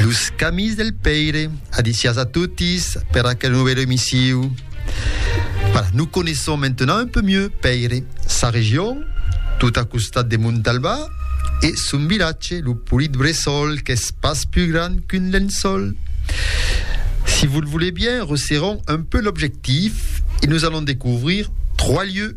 Los camis del Pèire, adicias a totis per aquel novèl emissiu. Voilà, nous connaissons maintenant un peu mieux Pèire, sa region, tout a costat de Montalbà, e son vilatge, lo polit bressol qu'es pas plus grand qu'un lençol. Si vous le voulez bien, resserrons un peu l'objectif et nous allons découvrir trois lieux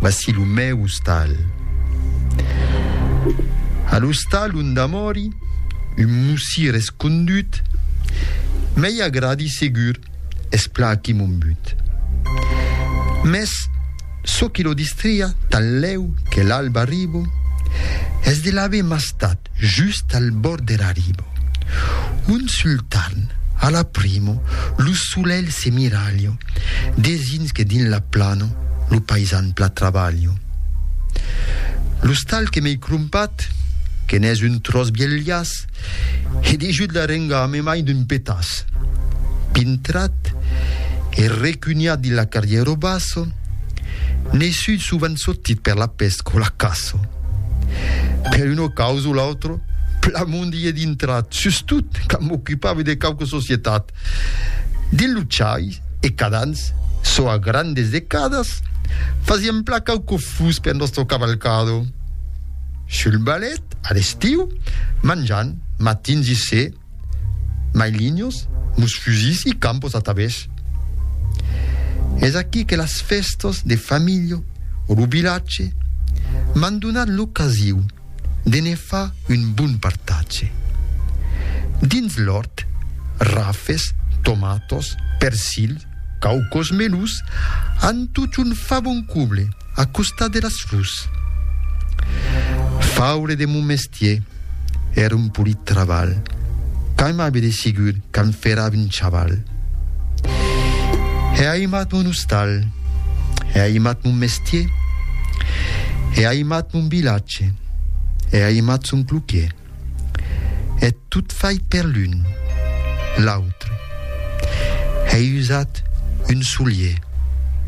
Vasi lo mèu ostal. A l'ostal unda mòri un mossir escondut, mei agradi segur es plaquí mon but. Mès çò qui lo distria tanlèu que l'alba arribo es de l'aver mastat. just al bòrd dera riba. Un sul tarn, a la primo, lo solelh se miralha, desins que dins la plana lo paisan pla trabalha. L'ostal que m'ei crompat, que n'es un tròç vielhas, he deishut la renga a memai d'un petàs. Pintrat e recunhat dins la carrièra bassa, N'es sut sovent sotit per la pèsc o la caça. Per una causa o l'autra, Plamond i é dintrat, sustot quand m'ocupava de quauque societat. Dins lo chai, e cadans, çò a grandes decadas, fasiam plan quauque fus per nòstre cavalcado. Sul balèt, a l'estiu, manjant, matins i se, mai linhos, nos fusils e campos atavés. Es aquí que las fèstas de familha o lo vilatge m'an donat l'ocasiu de ne far un bon partatge. Dins l'òrt, rafes, tomatos, persil, Quauquos menus an tot un fabon couble a costat de las fus. Faure de mon mestier èra un polit trabalh quand m'avi desigut quand fèra un chaval. È aimat mon ostal, è aimat mon mestier, è aimat mon vilatge, è aimat son cloquier. E tot fai per l'un, l'autre. Hèi usat un solier.